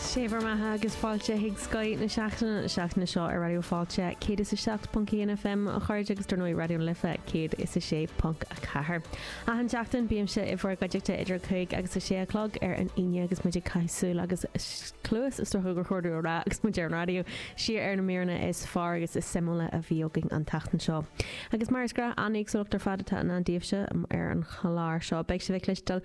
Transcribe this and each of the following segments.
Sé bhur mbeatha agus fáilte chuig Scoth na Seachtaine na seachtaine seo ar Raidió Fáilte 107.1 FM a chairde agus dar ndóigh Raidió na Life 106.4. Achan seachtain bímse i bhur gcuideachta idir a cúig agus a sé a chlog ar an Aoine agus muid ag caitheamh súil agus cluas is dócha gur chóir domh a rá agus muid ar an raidió siar ar na míreanna is fearr agus is suimiúla a bhí againn an tseachtain seo. Agus mar is gnáth an éagsúlacht ar fad atá i ndán daoibhse ar an chlár seo. Beidh sibh ag cluinstin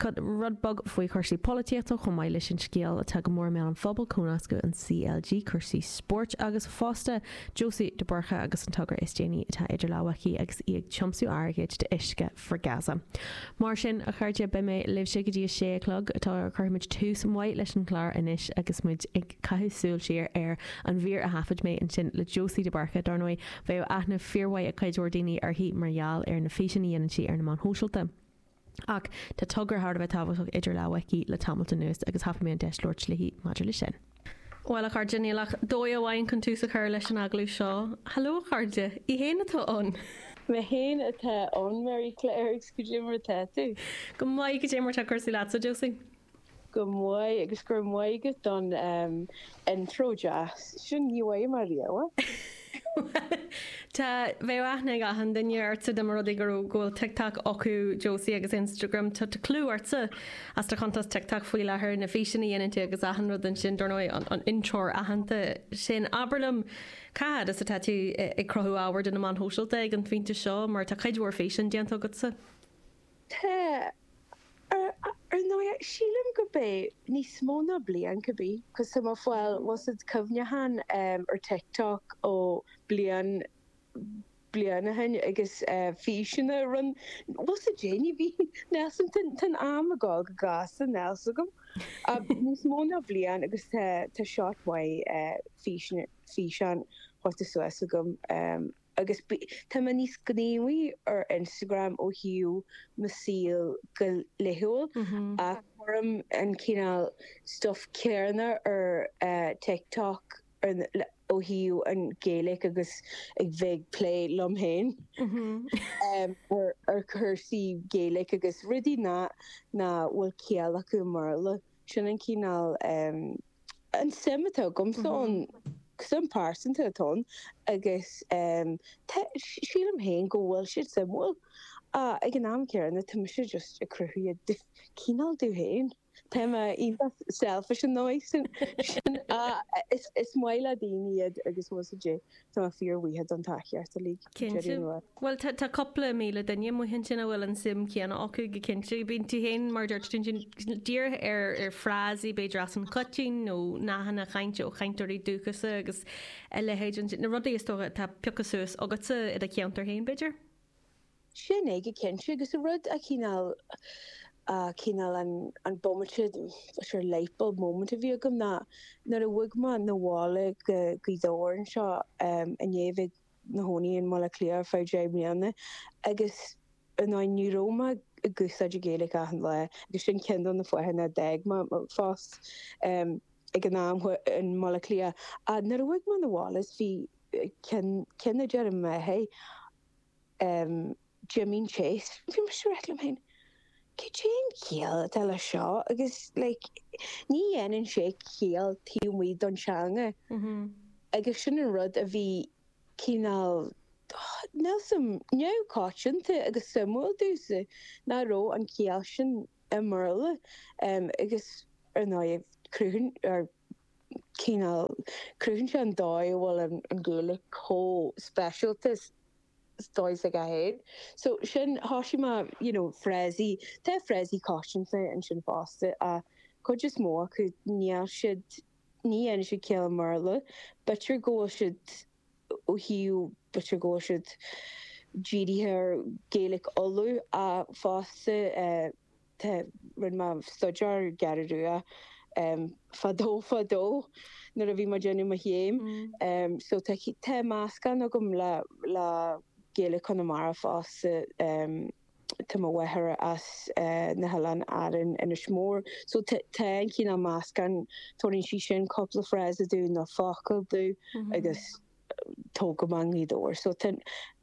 rud beag faoi chúrsaí polaitíochta chomh maith leis an scéal atá go mór i mbéal an phobail, comhnascadh an CLG, cursaí spóirt agus fosta Josie de Búrca agus an togra is déanaí atá idir lámha aici agus í ag tiomsú airgid d'Uisce for Gaza. Mar sin, a chairde, beidh mé libhse go dtí a sé a chlog. Cuirfimid tús maith leis an chlár anois agus muid ag caitheamh súil siar ar an mhír a thaifid mé ansin le Josie de Búrca. Dar ndóigh, bheadh aithne fíormhaith ag cuid mhór daoine uirthi mar gheall ar na físeanna a dhéanann sí ar na meáin shóisialta. Ach tá togra thar a bheith tábhachtach idir lámha aici le tamalt anuas agus thapaigh mé an deis labhairt léi maidir leis sin. Bhuel, a chairde, níl ach dóigh amháin chun tús a chur leis an agallamh seo. Haló, a chairde! Í fhéin atá ann! Mé fhéin atá ann, Mary Claire, agus goidé mar atá tú? Go maith, goidé mar atá cúrsaí leatsa, a Josie? Go maith agus go raibh maith agat don intro deas sin. Ní bhfaighidh mé riamh. Tá, bheadh aithne ag achan duine ortsa dá mba rud é go raibh, go bhfuil TikTok acu, Josie, agus Instagram. Tá clú ortsa as do chuntas TikTok faoi láthair, na físeanna a dhéanann tú agus achan rud ansin, dar ndóigh an intreoir aitheanta sin. Abair liom, cá fhad is atá tú ag cruthú ábhair do na meáin shóisialta ag an phointe seo, mar tá cuid mhór físeán déanta agatsa? Tá, ar ndóigh. Sílim go mbeadh níos mó ná bliain, could be, cos tá mé ag fáil, bhfuil a fhios agat, cuimhneacháin ar TikTok ó bliain, bliain ó shin agus físeanna a rinn mé, bhfuil a fhios agat, déanaí, níl a fhios agam, tá, tá an am ag dul go gasta, níl a fhios agam. Ach níos mó ná bliain agus tá, tá scaifte maith físeanna, físeán faighte suas agam. agus tá mé níos gníomhaí ar Instagram ó thaobh mo saol go laethúil ach cuirim an cineál stuff céanna ar TikTok ó thaobh an Ghaeilge agus a bheith ag plé liom féin ar chúrsaí Gaeilge agus rudaí nach bhfuil ciall acu i mBéarla, sin an cineál. an suim atá agamsa ann, suim pearsanta atá ann agus sílim féin go bhfuil siad suimiúil ach ag an am céanna tá mise just ag cruthú iad cineál domh féin. Tá mé iontach selfish an dóigh sin ach is maith le daoine iad agus muise Tá fíor mhaithe don tá cheart uilig. Cinnte. Bhuel tá tá cúpla míle duine amuigh ansin a bhfuil an suim chéanna acu go cinnte. Bíonn tú féin mar dúirt tú ansin dírithe ar ar frásaí b'fhéidir as an choitinn nó nathanna chainte ó chainteoirí dúchasacha agus a leithéid ansin, na rudaí is dócha atá pioctha suas agatsa i do cheantar féin b'fhéidir? sin é go cinnte agus an rud a chineál a chineál an an bomaite sure lightbulb moment a bhí agam ná nuair a bhog mé 'na bhaile go Gaoth Dobhair anseo um i ndiaidh bheith i mo chónaí i mBaile Átha Cliath ar feadh deich mbliana agus you know ní raibh mé ag úsáid Gaeilge achan lá agus sin ceann de na fáthanna a d'fhág mé mo phost um ag an am i mBaile Átha Cliath a nuair a bhog mé 'na bhaile is bhí cinn cinn a deir mé hey Um Jimín Chase, bhí mise ag ráit liom féin, cad é an chiall atá le seo agus like, ní dhéanann sé ciall taobh amuigh don teanga agus sin an rud a bhí cineál níl a fhios agam neamhchoitianta agus suimiúil domhsa nach raibh an chiall sin i mBéarla um agus ar ndóigh cruthúnas, cineál. Cruthaíonn sé an dóigh a bhfuil an Ghaeilge chomh speisialta sa dóigh s'aici féin. So sin, thosaigh mé, you know, frásaí, tá frásaí coitianta ansin fosta ach cuid is mó acu, níl siad, ní dhéanann siad ciall i mBéarla. B'fhéidir go bhfuil siad ó thaobh, b'fhéidir go bhfuil siad dírithe ar Gaeilge Uladh ach fosta eh, Tá, rinne mé staidéar ar an gCeathrú Rua fadó fadó nuair a bhí mé ag déanamh mo chéim so tá, tá meascán agam le, le Gaeilge Chonamara fosta. Tá mo mháthair as na hOileáin Árann, Inis Mór, so tá, tá an cineál meascán, tabharfaidh sí sin cúpla frása domh nó focal domh agus tóg go mbeannaí dó ar so tá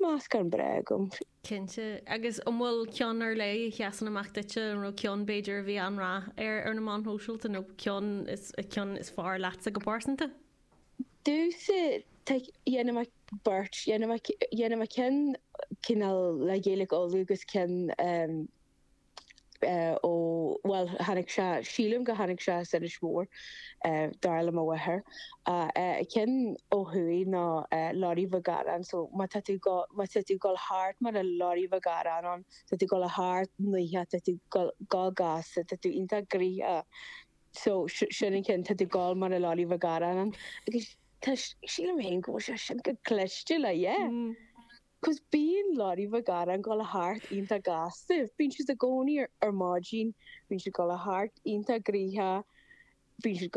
meascán breá agam. Cinnte. Agus an bhfuil ceann ar leith a sheasann amach duitse, nó ceann b'fhéidir a bhí an-rath air ar na meáin shóisialta, nó ceann is ceann is fearr leatsa go pearsanta? Domhsa, tá, dhéanfaidh mé beirt, dhéanfaidh mé, dhéanfaidh mé ceann cineál le Gaeilic Uladh agus ceann ó bhuel tháinig sé sílim go tháinig sé as Inis Mór dar le mo mháthair an ceann ó thuaidh ná lorry Mhic Ghearáin so má tá tú go má tá tú goil thart mar a lorry Mhic Ghearáin ann tá tú goil a thart nuithe tá tú goil go gasta tá tú iontach gnoitheach so sin an ceann tá tú goil mar a lorry Mhic Ghearáin an agus tá sílim héin go bhfuil sé sin go cliste le yeah mm. 'Cause bíonn leoraí bheag aráin ag gabháil thart iontach gasta. Bíonn siad i gcónaí ar ar maidin. Bíonn siad ag gabháil thart iontach gnoitheach. Bíonn siad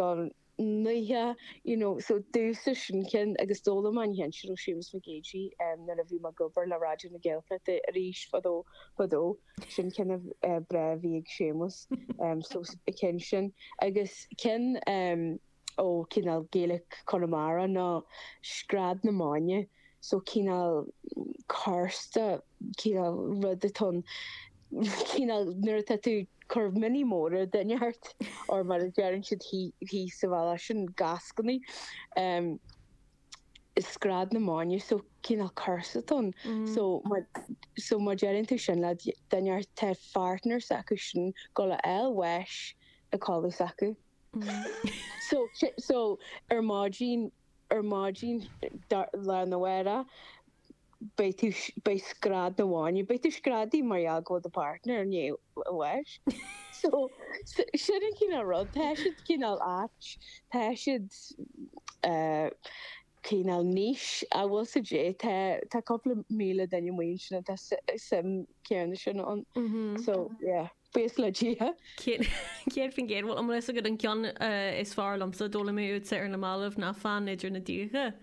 gnoitheach, you know. So domhsa sin ceann agus d'fhoghlaim mé an ceann sin ó Séamus Mac Géidigh eh nuair a bhí me ag obair le Raidió na Gaeltachta arís fadó fadó. Sin ceann a eh breá a bhí ag Séamus. Em so is ceann sin agus ceann em. ó chineál Gaeilge Chonamara ná scread na maidne, so cineál curse atá, cineál rud atá ann, cineál nuair atá tú ag cur mionnaí móra ar dhuine inteacht, or mar a deireann siad thíos sa bhaile sin eascainí, is scread na maidne, so cineál curse atá ann. So má, so má deireann tú sin le duine inteacht tá an partner s'acu sin, ag gabháil a fháil bháis sa chodladh s'acu. So, so, ar maidin, ar maidin, lá arna mhárach, beidh tú, beidh scread na maidne, beidh tú ag screadaí mar gheall go bhfuil do partner i ndiaidh bháis. So, so, sin an cineál rud, tá siad cineál ait, tá siad eh, cineál niche, an bhfuil fhios agat, tá, tá cúpla míle duine amuigh ansin atá su- suim chéanna sin ann. So, yeah. Buíochas le Dia. Céad faoin gcéad. Bhuel, an bhfuil fhios agat an ceann is fearr liomsa, d'fhoghlaim mé uaitse ar na mallaibh ná fan idir na díogacha.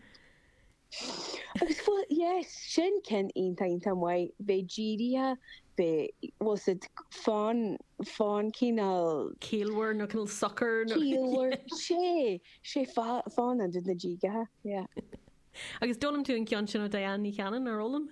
Agus bhuel, yes, sin ceann iontach, iontach maith. Bheith dírithe, bheith, bhuel, sé, fan, fan cineál. Ciallmhar nó cineál socair nó. Ciallmhar, sé, sé fan idir na díogacha, yeah. Agus d'fhoghlaim tú an ceann sin ó Diane Ní Chanainn, nár fhoghlaim?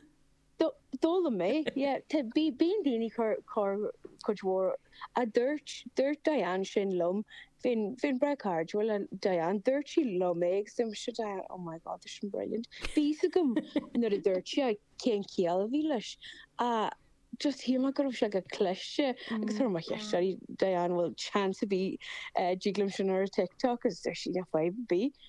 D'fhoghlaim mé, yeah. Tá, bíonn daoine ag cur, cur, cuid mhór, a dúirt, dúirt Diane sin liom, bheinn, bheinn breá cairdiúil le Diane, dúirt sí liom é agus dúirt mise, Diane, oh my God, tá sin brilliant. Bhí fhios agam nuair a dúirt sí é cén chiall a bhí leis ach just shíl mé go raibh sé chomh cliste agus chuir mé ceist ar Diane, bhfuil chance ar bith dtig liom sin a chur ar TikTok agus dúirt sí, yeah, fadhb ar bith.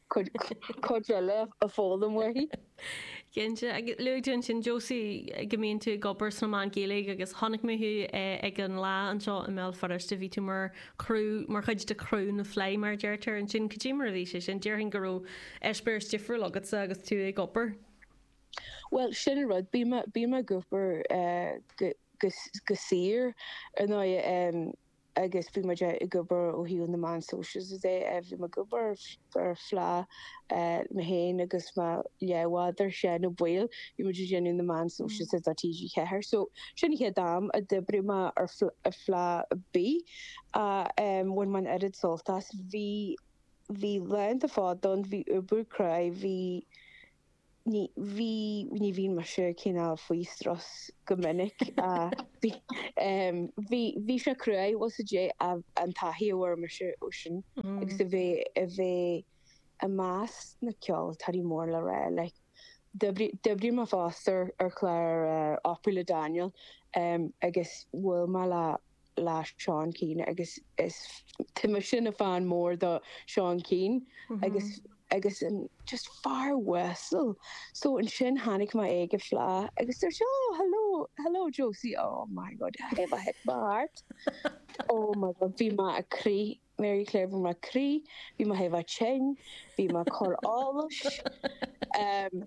cuid eile a fhoghlaim uaithi. Cinnte, agus luaigh tú ansin Josie go mbíonn tú ag obair sna meáin Ghaeilge agus chonaic mé thú ag an Fhleadh anseo i mBéal Feirste, bhí tú mar chuid de chriú na Fleidhe mar a deirtear ansin. Cad é mar a bhí sé sin? Déarfainn go raibh eispéireas difriúil agatsa agus tú ag obair. Bhuel, sin an rud, bím ag obair go saor ar ndóigh. agus bhí muid ag obair ó thaobh na meán sóisialta de. Bhí mé ag obair ar Fleadh, mé féin agus mo leathbhádar Seán Ó Baoill, bhí muid ag déanamh na meán sóisialta do TG4 so sin an chéad am a d'oibrigh mé ar Fleadh ar bith a bhain mé an oiread sult as. Bhí laethanta fada ann, bhí obair cruaidh, bhí. Ní bhínn mise cineál faoi strus go minic. Bhí sé crua, bhuel, is é, an taithí a bhfuair mise ó sin agus a bheith i measc na ceoltóirí mór le rá. D'oibrigh mé fosta ar chlár Opry le Daniel agus bhuail mé le le Seán Keane agus is, tá mise i mo fan mór de Seán Keane agus agus an just fear uasal so ansin tháinig mé air ag fleá agus dúirt sé oh hello hello Josie oh my god I have a thing my heart oh my god bhí mé ag crith Máire Claire bhí mé ag crith bhí mé chomh tinn bhí mé chomh, áthas um,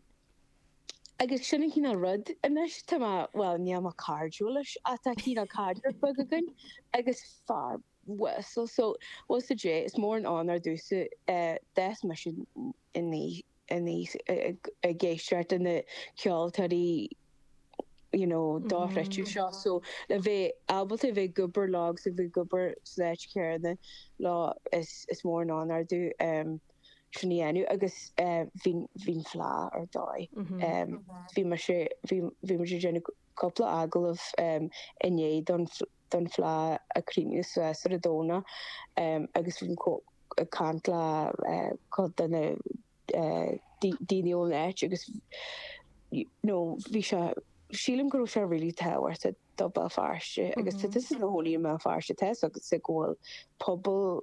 Agus sin an cineál rud, anois tá mé, bhuel, níl mé cairdiúil leis ach tá cineál caidreamh beag againn agus fear uasal so, bhuel is é, is mór an onóir domhsa, d'fhás mise aníos ag éisteacht leis na ceoltóirí you know dochreidte seo so le bheith ábalta a bheith ag obair leo agus a bheith ag obair san áit chéanna leo is mór an onóir domh. sin a dhéanamh agus bhí an fleá ar dóigh. Bhí mise bhí mise ag déanamh cúpla agallamh inné don don fleá, ag craoladh sa sa raidió agus bhí mise ag caint le cupla de na daoine ón áit agus you know bhí sé sílim go raibh sé really tábhachtach do Bhéal Feirste agus tá tusa i do chónaí i mBéal Feirste tá's agatsa go bhfuil pobal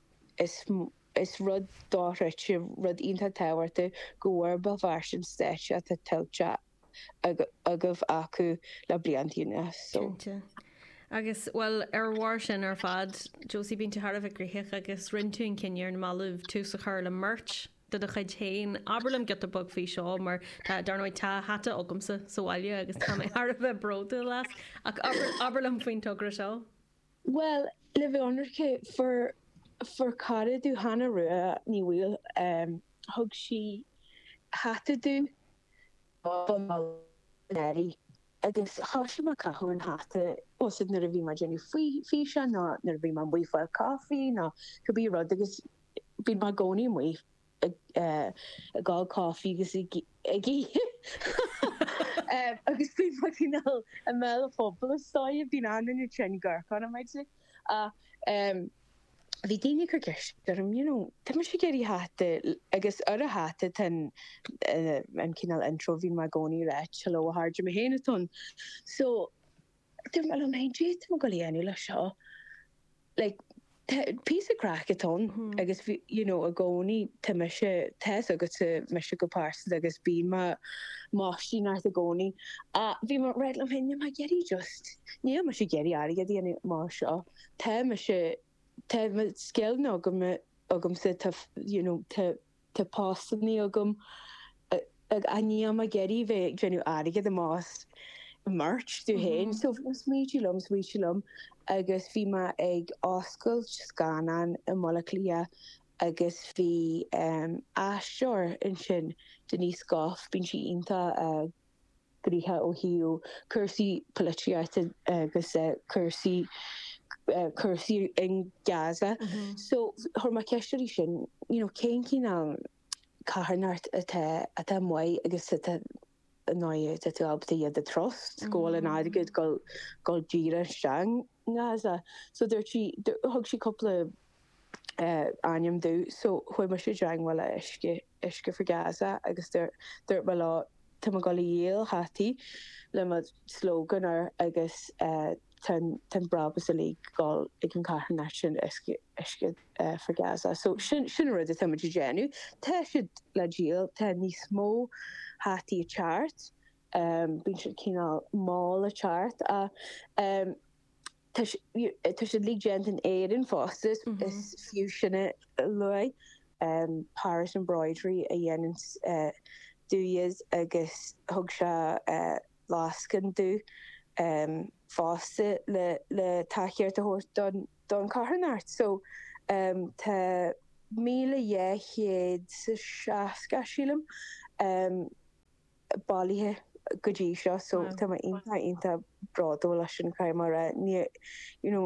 Is is rud dochreidte, rud iontach tábhachtach go bhfuair Béal Feirste an stáitse atá tuillte agaibh acu le blianta anuas. Cinnte. Agus, bhuel, ar bharr sin ar fad, Josie, bíonn tú thar a bheith gnoitheach agus rinn tú an cinneadh ar na mallaibh tús a chur le merch de do chuid féin. Abair liom giota beag faoi seo mar tá, dar ndóigh, tá hata agamsa sa bhaile agus tá mé thar a bheith bródúil as. Ach abair, abair liom faoin togra seo. Bhuel, le bheith ionraice, fuair, fuair cara domh, Hannah Rua Ní Bhaoill, em, thug sí hata domh don lá breithe agus thoisigh mé ag caitheamh an hata, ag úsáid nuair a bhí mé ag déanamh faoi, físeán nó nuair a bhí mé amuigh ag fáil coffee nó cibé rud agus bíonn mé i gcónaí amuigh. ag ól caife agus ag ithe agus bíonn mé cineál i mbéal an phobail. Is dóigh bíonn achan duine tinn ag amharc orm an méid sin ach bhí daoine ag cur ceist orm, you know, tá mise ag iarraidh hata agus ar an hata tá an cineál intro bíonn mé i gcónaí ag ráit, hello a chairde, is mé féin atá ann. So. Dúirt mé liom fhéin, caidé tá mé ag dul a dhéanamh le seo, like, tá píosa craic ann agus bhí, you know, i gcónaí, tá mise, tá's agatsa mise go pearsanta agus bíonn mé ag maistíneacht i gcónaí ach bhí mé ag ráit liom fhéin, níl mé ag iarraidh just, níl mise ag iarraidh airgead a dhéanamh mar seo, tá mise, tá mo scileanna agam, agamsa, tá, you know, tá. Tá postannaí agam ach níl mé ag iarraidh bheith ag déanamh airgead amach as merch domh fhéin so bhí smaoitiú liom smaoitiú liom agus bhí mé ag oscailt scannán i mBaile Átha Cliath agus bhí aisteoir ansin Denise Gough bíonn sí iontach gníomhach ó thaobh cúrsaí polaitíochta agus cúrsaí cúrsaí in Gaza. So chuir mé ceist uirthi sin, you know, cén cineál carthanachtaí atá maith agus atá i ndáiríre atá tú ábalta iad a trust go bhfuil an airgead ag dul díreach isteach in Gaza. So dúirt sí thug sí cúpla ainm domh so chuaigh mise i dteagmháil le Uisce uisce for Gaza agus dúirt mé leo tá mé ag dul a dhíol hataí le mo slogan air agus tá an brabús uilig ag dul ag an charthanacht sin Uisce for Gaza. So sin sin an rud atá muid a dhéanamh. Tá siad le díol, tá níos mó hataí ag teacht, bíonn siad cineál mall ag teacht ach, Tá siad uilig déanta in Éirinn fosta, is fiú sin a lua, Paris Embroidery a dhéananns domh iad agus thug sé lascaine domh fosta le tacaíocht a thabhairt don charthanacht. So tá míle dhá chéad 's a seasca, sílim, bailithe go dtí seo so tá mé iontach iontach bródúil as an chraic mar a ní you know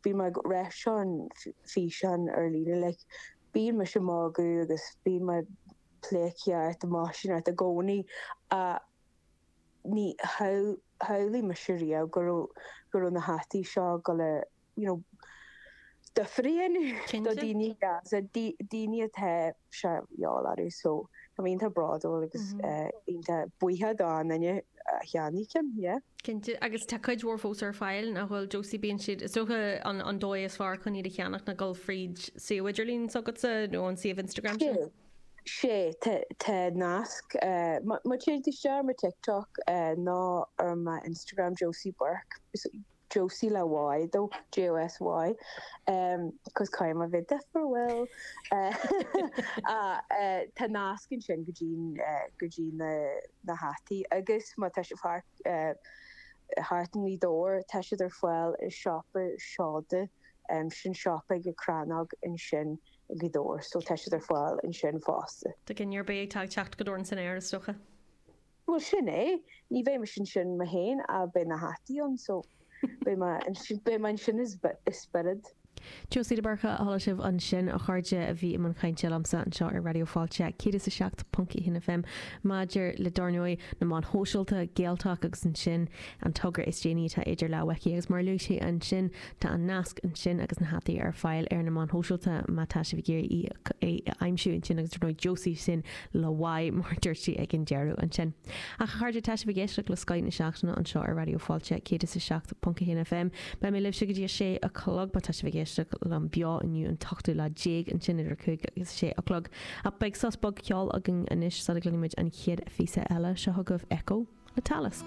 bhí mé ag ráit san fhíseán ar líne like bíonn mise ag magadh agus bíonn mé ag pleidhcíocht ag maistíneacht i gcónaí ach níor shamhlaigh mise riamh go raibh go raibh na hataí seo ag dul a do threabhlóid do dhaoine Gaza, daoine atá, sea, iall orthu. So, tá mé iontach bródúil agus iontach buíoch de na daoine a cheannaigh ceann, yeah. Cinnte, agus tá cuid mhór fós ar fáil, nach bhfuil, Josie? Bíonn siad, is dócha, an dóigh is fearr chun iad a cheannach ná gabháil fríd suíomh idirlín s'agatsa nó an suíomh Instagram sin. Sea, tá nasc, má théann tú isteach ar mo TikTok nó ar m'Instagram, Josie Burke, Josie le Y, J-O-S-Y, em, 'cos caithfidh mé a bheith difriúil, eh, ach, eh, tá nasc ansin go dtí, eh, go dtí na, na hataí agus má tá sibh thart, eh, thart i nGaoth Dobhair tá siad ar fáil i siopa seoda, em, sin siopa ag an Crannóg ansin i nGaoth Dobhair so tá siad ar fáil ansin fosta. Tá duine ar bith ag teacht go dtí Dorn san aer is dócha. Bhuel, sin é. Ní bheidh mise ansin, mé féin, ach beidh na hataí ann, so beidh mé ansin i spiorad. Josie de Búrca a chuala sibh ansin, a chairde, a bhí i mbun cainte liomsa anseo ar Raidió Fáilte 107.1 FM maidir le, dár ndóigh, na meáin shóisialta, Gaeltalk agus ansin an togra is déanaí atá idir lámhaibh aici agus, mar a luaigh sí ansin, Tá an nasc ansin agus na hataí ar fáil ar na meáin shóisialta má tá sibh ag iarraidh í a aimsiú ansin agus dar ndóigh Josie sin le Y mar a dúirt sí ag an deireadh ansin. Ach a chairde, tá sibh ag éisteacht le Scáthán na Seachtaine anseo ar Raidió Fáilte 107.1 FM. Beidh mé libhse go dtí a sé a chlog má tá sibh ag éisteacht liom beo inniu an t-ochtú lá déag ansin idir a cúig agus a sé a chlog. Ach beidh sos beag ceoil againn anois sula gcluinfimid an chéad phíosa eile. Seo chugaibh Echo le Talisk.